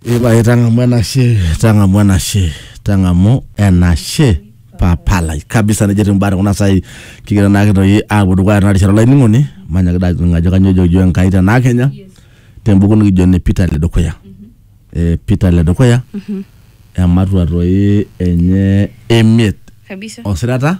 Ipae tang'amu enashe, tang'amu enashe, tang'amu enashe papa lai kabisa nejo etiu imbaa tekuna saai kigira naake toi aapuo dukuya tena rishata olainining'oni manyaki dai aning ajo kanyoo ejoki iyiok Enkai tenaa kenya tembuku nikijo ene Peter ledukuya eh, Peter ledukuya ematua toi enye emiet kabisa osirata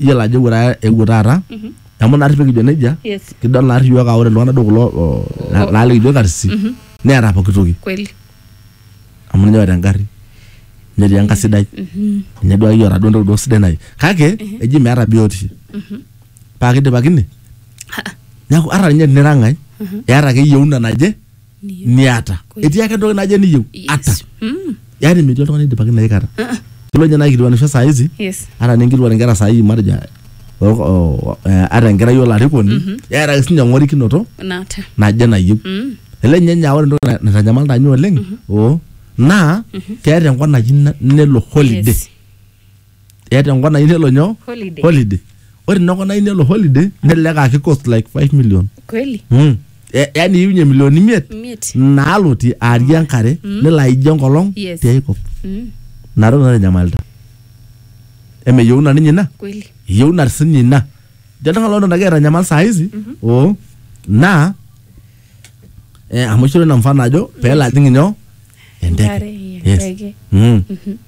iyiolo ajo ewuo taata ewuo taata amu naarri pekijo nejia Yes. kidol naarri iyiook aa ore iltung'anak duo kulo o- na- naa likijo karsisi neeta pooki toki kweli amu ninye oota engarri netii enka sidai ninye duo akeyie oota duo entoki duo sidai naai kake eji meeta biotisho paa kidipakine neeku ata ninye tenira ng'ae eeta ake yieuna naje niata etii ake entoki naje niyieu ata Yes. Mm. yaani metii oltung'ani oidipaki ina aikata kelo ninye naikilikuanisho saa hizi Yes. ata ninkilikuan inkera saa hii matejo o- o- eh, ata enkerai olarikoni eeta ake sinye eng'orikinoto Naata. naje nayieu Mm. ele ninye ninye aa ore entoki na- naitanyamal tanye oleng oo naa keeta enkop naji na- nelo holiday Yes. eeta enkop nayieu nelo nyoo Holiday. holiday ore ina kop nayieu nelo holiday nelelek aa ki cost like 5 million kweli mm. E- yaani iunye milioni imiet miet naalotie aarie enkare nelo aijie enkolong Yes. tiai kop Mm, ina toki naitanyamalita emeyieu na ninye ina kweli eyieu na sinye ina jo oltung'ani loton agira aitanyamal saa hizi oo naa eh, amu ishoro ina mfano ajo peelo ajing inyoo Enkare, enteke yes. enteke. Mm.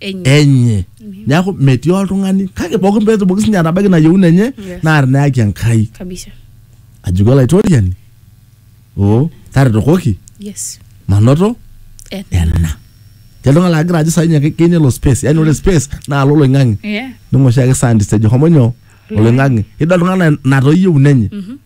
enye enye neeku metii oltung'ani kake pookin peetumoki sinye atabaiki ina yieuna enye Yes. naa tinayaki enkai kabisa ajoki olaitoriani oo taretokoki yes manoto Eh, ena Etii oltung'ani lagira ajo sainye keyieu nelo space yani ore space naa alo oloing'ang'e yeah ning'oshi ake scientist ejo homo nyoo oloing'ang'e idol iltung'anak natoyieu nenye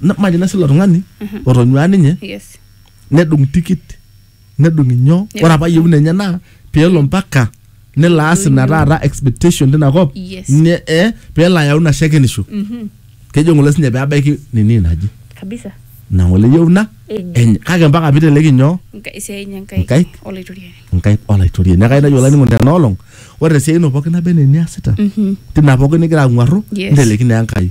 Na- majo nasi ilo tung'ani otonyuaa ninye Yes. nedung tikit nedung inyoo Nedung ore apa yieuna enye naa peelo mpaka nelo aas ina taata expectation tina kop Yes. ne- eh, peelo ayau ina shakenisho Mhm. kejo ng'ole sinye peebaiki nini naji Kabisa. ina ng'ole yieuna Enye. enye kake mpaka piteleki nyoo Nka- esiai enye Nkaik. nkaik Olaitoriani. nkaik olaitoriani neeku ainajo olainining'oni tena olong ore tesiai ino pookin naba enaa eniasita Mhm. tina pookin nigira ang'uarru Yes. nteleki naa enkai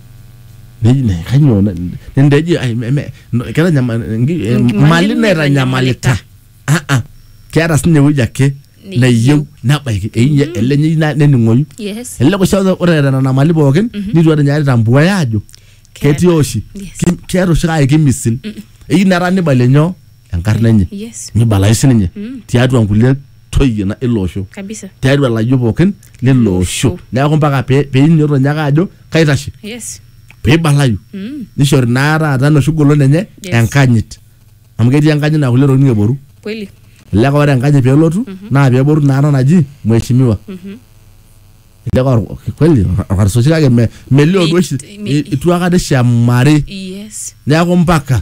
Neji- ne- kanyoo na- nende eji ai, me- me- no- ketanyama- ngi- eh, Ngi- mali naitanyamalita Ah, ah. keeta sinye ewueji ake Neyieu. neyieu nebaiki Einyia ele nyei na- nening'oyu Yes. elelek oshi aa ore eeta nena mali pookin nitu eeta ninye aitambuaya ajo Keeta. ketii oshi Yes. Ki- keeta oshi kake kimisil eyieu netaa nibalie nyoo enkarna enye yes nibalayu sininye Mm. tiatua nkulie toyie na- ilo osho kabisa tiatua ilayiok pookin lilo osho Osho. neeku mpaka pe- peinyoto nyake ajo kaitashe yes peibalayu mm. nishori naa taata enoshi golon enye Yes. enkanyit amu ketii enkanyit naa kulie tokitin eboru kweli elelek ore enkanyit pelotu naa peboru naa ena naji mheshimiwa Mhm. elelek or- kweli orkarsoshi kake me- melio duo oshi Mi- mi- itu akata ishamari yes neeku mpaka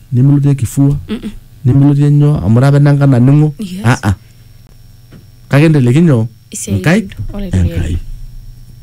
nimilotie kifua nimilotie nyoo amu ore apa enanka naning'o Yes. aa kake enteleki nyoo Isiatin nkaik olaitoriani. enkai